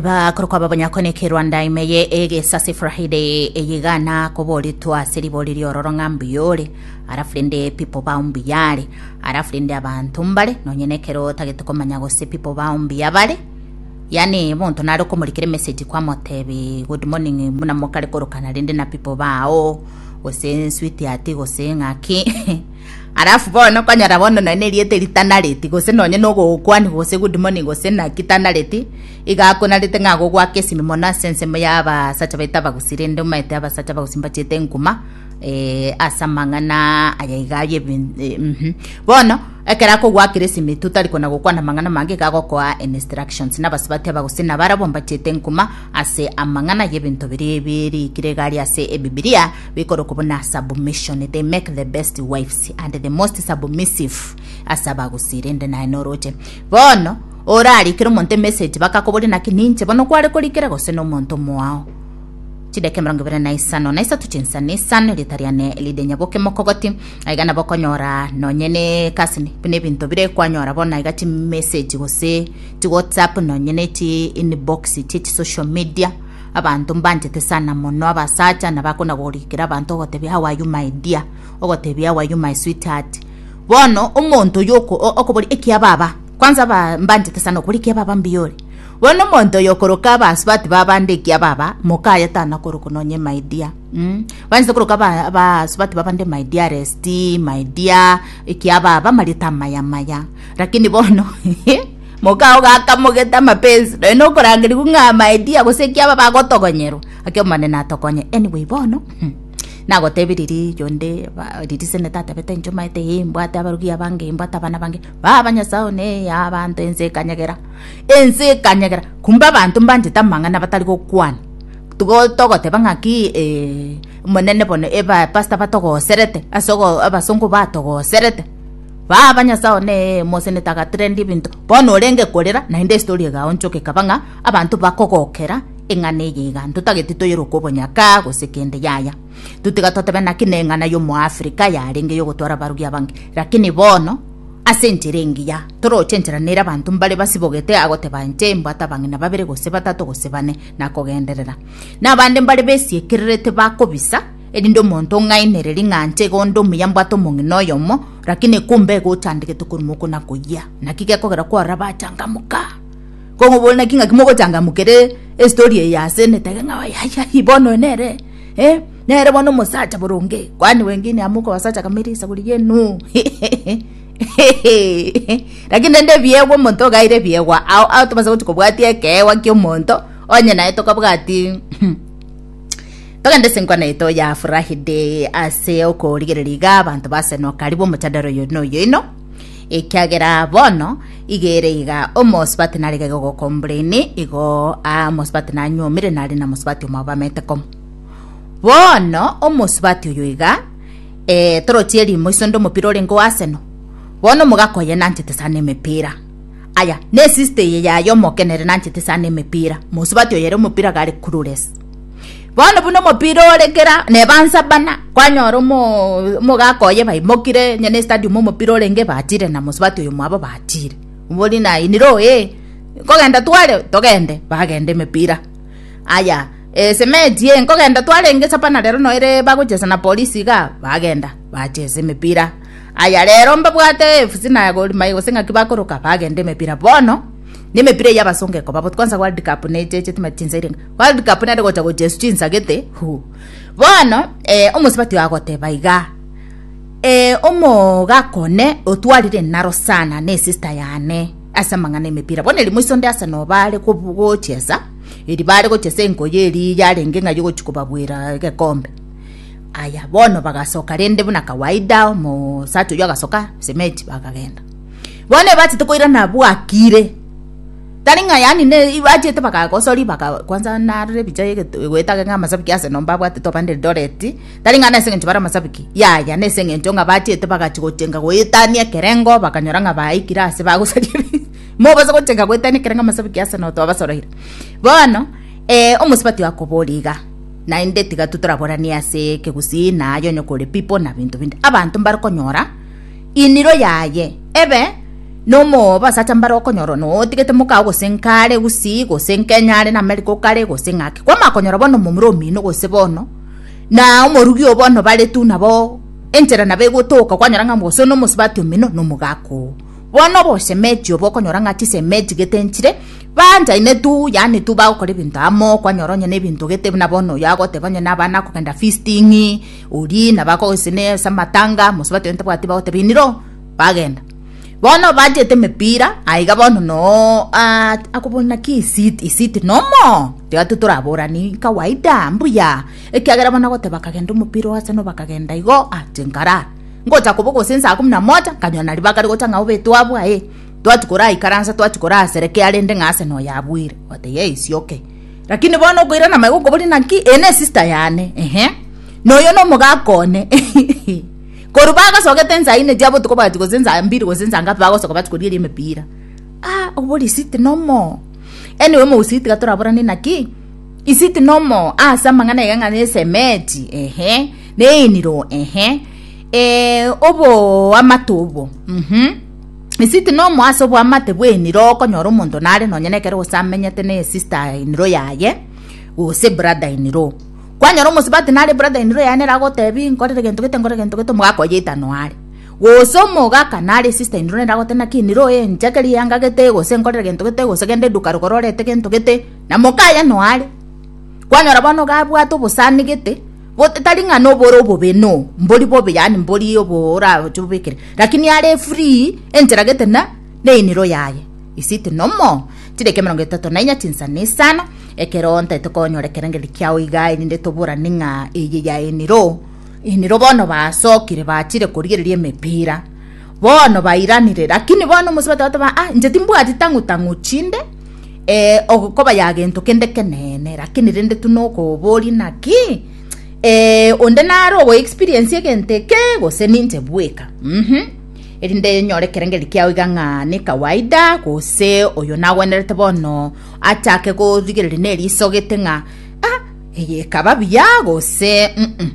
bakorokwa babonyakoneke rwanda ime ye egesase friday eyigana koboritwa ase ribori riororo ng'a mbuyore arafu rende pipo bao mbuyare arafu rende abanto mbare nonye nekero otagete komanya gose pipo bao mbuya bare yani monto nare okomorikere message kwamotebe good morning buna mokare korokana rende na pipo bao gose sweetheart gose ng'aki Alafu bono okonyora bono nonya neriete ritanareti gose nonya nogogokwani gose good morning gose naki tanareti iga akonarete ng'a agogwaka esimi mono ase ensemo ya abasacha baito abagusi rende omaete abasacha abagusi mbachiete enkuma eh, ase amang'ana aya iga aye ebin- eh, mhm. bono ekero akogwakera esimi tu tari kona gokwana amang'ana amange iga agokoa instructions na abasubati abagusi nabarabwo mbachiete enkuma ase amang'ana y'ebinto biria ebi erikire iga aria ase ebibilia Bikorokwa buna submission, they make the best wives and the most submissive ase abagusi rende naye noroche. Bono orarikere omonto emessage bakakoboria naki ninche bono kware korikera gose nomonto omoao chideke mirongo ibere na isano na isato chinsa na isano rita riane elide nyaboke mokogoti aiga nabo okonyora nonye ne kasini buna ebinto bire kwanyora bono aiga chimessage gose chi whatsapp nonye ne chi inbox chie chi social media Abanto mbanchete sana mono abasacha nabakonagorikera abanto ogotebia how are you my dear, ogotebia how are you my sweetheart. Bono omonto oyo oko- o- okobori ekia baba, kwanza aba- mbanchete sana okobori ekia baba mbuya ore. Bono omonto oyo okoroka abasubati ba abande ekia baba, moka aye tanakoroka nonye my dear. Mm. Banchete koroka aba- abasubati ba abande my dearest, my dear, ekia baba amarieta amaya maya. Lakini bono Moka ogo akamogeta amapensi, nonya nokorangerigwa ng'a Amaedia gose ki aba bagotogonyeru. Ake Omonene atokonye. Anyway bono nagotebi riri yonde ba- riri seneta atebete inche omanyete ee mbwate abarugi abange ee mbwate abana bange baba nyasae one ee abanto ense ekanyegera ense ekanyegera kumbe abanto mbanchete amang'ana batari gokwana tigo togoteba ng'aki omonene bono eba pastor batogoserete ase ogo abasongo batogoserete. Baba, Nyasae one, mosenete agatira endi ebinto, bono orenge korera, naende estori egaonchoka ekaba ng'a abanto bakogokera eng'ana eye iga, ntotageti toyere okobonyaka gose kende. Yaya, totiga totebe naki neng'ana y'Omoafrika yarenge y'ogotwara abarugi abange, lakini bono ase enchera engiya toroche enchera nere abanto mbare basibogete agoteba inche mbwate abang'ina babere gose batato gose bane, nakogenderera. Nabande mbare besiekererete bakobisa. erinde omonto ong'ainere ring'anche iga onde omuya mbwate omong'ina oyomo, rakini ekumba ego ochandegete koruma oko na koyia, naki gekogera kwarabachangamoka. Kong'obore naki ng'aki mogochangamukera estori eye ase netege ng'a ayayayai bono oyo nere eh, nere bono omosacha boronge, kwani wenge inamoka obasacha kameri esaburi yenuu rakini rende ebiegwa omonto ogaire ebiegwa ao ao tobasagochia kobwatia ekeegwa ki'omonto onye naye tokabwati Togende ase enkwana yaito ya Friday ase okorigereria iga abanto basenoka ribu omotadaro oyo noyo ino ekiagera bono igere iga omosibati narege gogokombreni igo ah, omosibati nanyomire nare na mosibati omao bamete komo bono omosibati oyo iga eh, torochie erimo iso nde omopira orenge o Arsenal bono omogaka oye nanchete sana emepira Aya nesista eye yaye omokenere nanchete sana emepira mosubati oyere omopira gare kurures bono buna omopira ore kera nebansa bana kwanyora omogaka oye baimokire nyene stadium omopira orenge batire na mosubati oyo mwabo batire mbori na iniro ee nkogenda tware togende bagenda emepira aya esementi ee nkogenda twarenge sapana rero noere bagochesa na polisi igaa bagenda bachesa emepira. Aya rero mbabwate AFC na Gor Mahia gose ng'aki bakoroka bagende emepira bono na emepira eyio abasonge koba botu kwanza World Cup na eche eche timati chinsa irenga World Cup nere gocha gocha esu chinsagete hu bono eh, omosibati agoteba iga eh, omogaka one otwarire naro sana na esista yane ase amang'ana emepira bono eri moiso nde ase nobare kobu- gochesa eri bare gochesa enkoyo eri yarenge ng'ai ogochi kobabwera egekombe Aya bono bagasoka rende buna kawaida omosacha oyio agasoka sementi bakagenda bono ebachete koirana bwakire tari ng'a yani ne ibachete bakagosori baka kwansa narore ebicha goetageka ng'a amasabiki ase nomba abwatete obande Eldoret tari ng'a nase eng'encho bare amasabiki yaya nase eng'encho ng'a bachete bagachi gochenga goetania ekerengo bakanyora ng'a baikire ase bagosaria ebi mobase gochenga goetania ekerengo amasabiki ase no twabasoroire bono omosubati akoboria iga. Naende tiga toraboranie ase ekegusii na aye onye kore pipo na binto binde abanto mbare konyora iniro yaye ebe nomoobo asacha mbare okonyora one otigete mokao gose nkare gusii gose nkenyare na America okare gose ng'aki kwamanya konyora bono omomura omino gose bono na omorugi oo bono bare tu nabo enchera nabo egotoka kwanyora ng'a gose one omosubati omino nomogaka oo. Bono obosemeti obo okonyora ng'a chisemeti gete nchire, baanchaine tu, yaani tu bagokora ebinto amo, kwanyora onye nebinto gete buna bono oyo agoteba onye nabana kogenda feasting, oria nabako gose ne ase amatanga, mosubati oyo ntabwati bagoteba iniro, bagenda. Bono bachete emepira, aiga bono noo aah akobua naki isit isit nomo, tiga tu toraborani kawaida, mbuya, ekiagera bono agoteba kagenda omopira ogaseno bakagenda igo, ah chinkaraa. ngocha kobo gose nsa akumu na moja nkanyora na ribaga rigota ng'a obe twabua ee twati koraikaransa twati korasereke arende ng'a ase noyo abuire otaiyo ee isi okay lakini bono okoirana amaiga okoboria naki eye ne sister yane ehe noyo no omogaka one korwa bagasogete ensa ine chia botuko bwati gose ensa mbiri gose ensa ngapi bagosoka bati korieria emepira ah obo risiti nomo anyway omogusii tiga toraborane naki isiti nomo ase amang'ana iga ng'a na esemeti ehe Neiniro, ehe, eh, oboamate obo, mhm. Isiti nomo ase oboamate bw'einiro okonyora omonto nare nonye na ekero gose amenyete na esista eniro yaye gose brada eniro. Kwanyora omosubati nare brada eniro yaye nere agotebi nkorire gento gete nkorire gento gete omogaka oyio oitano are. Gose omogaka nare esista eniro nere agotebi naki eniro eh nchakera eyanga gete gose nkorire gento gete gose genda eduka rogoro orete gento gete na moka aye noare. Kwanyora bono iga abwate obosanigete. Gose tari ng'a nobore obobe no mbori bobe yaani mbori oboragoche obekere lakini are free enchera gete na neiniro yaye isiti nomo chideka emerongo etato na inya chinsa na isano ekero ntaete konyora ekerengeri kiao iga erinde toborane ng'a eye ya eniro eniro bono basokire bachire korigereria emepira. Bono bairanire, lakini bono omosubati agateba, ah, inche timbwati tang'u tang'u chinde, eh, ogokoba ya gento kende keneene, lakini rende tu nokoboria naki eh, onde nare ogo experience egento eke gose ninche bweka mm -hmm. erinde nyore kerengeri kiao iga ng'a ne kawaida gose oyo nagwenerete bono achake gorigereria nerisogete ng'a ah, eye ekaba buya gose mm -mm.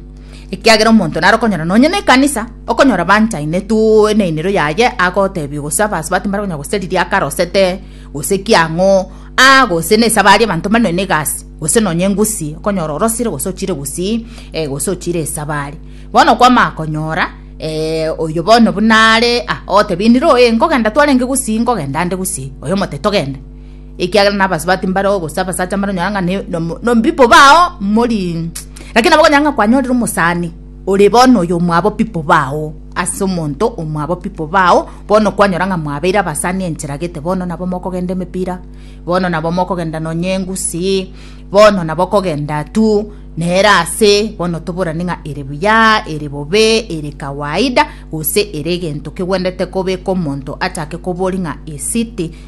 ekiagera omonto naro okonyora nonye na ekanisa, okonyora banchaine tu eneino yaye agotebia gose abasubati mbare konya gose riria akarosete, gose ki ang'o, aa gose na esabari abanto mbare nonya na egasi, gose nonya engusi, okonyora orosire gose ochire gusii, eh gose ochire esabari. Bono okwama konyora oyo bono buna are, ah ogotebia inire oye nkogenda twarenge gusii, nkogenda ande gusii, oyo omote togende. Ekiagera nabasubati mbare oo, gose abasacha mbare onyora ng'a ne- nomo- nombipo bao mori Lakini nabo okonyora ng'a kwanyorire omosani ore bono oyo omwabo pipo bao ase omonto omwabo pipo bao bono kwanyora ng'a mwabeire abasani enchera gete bono nabo mokogenda emepira bono nabo mokogenda nonye engusii bono nabo okogenda tu nere ase bono toborani ng'a ere buya ere bobe ere kawaida gose ere egento kegwendete kobeka omonto achake kobori ng'a esiti.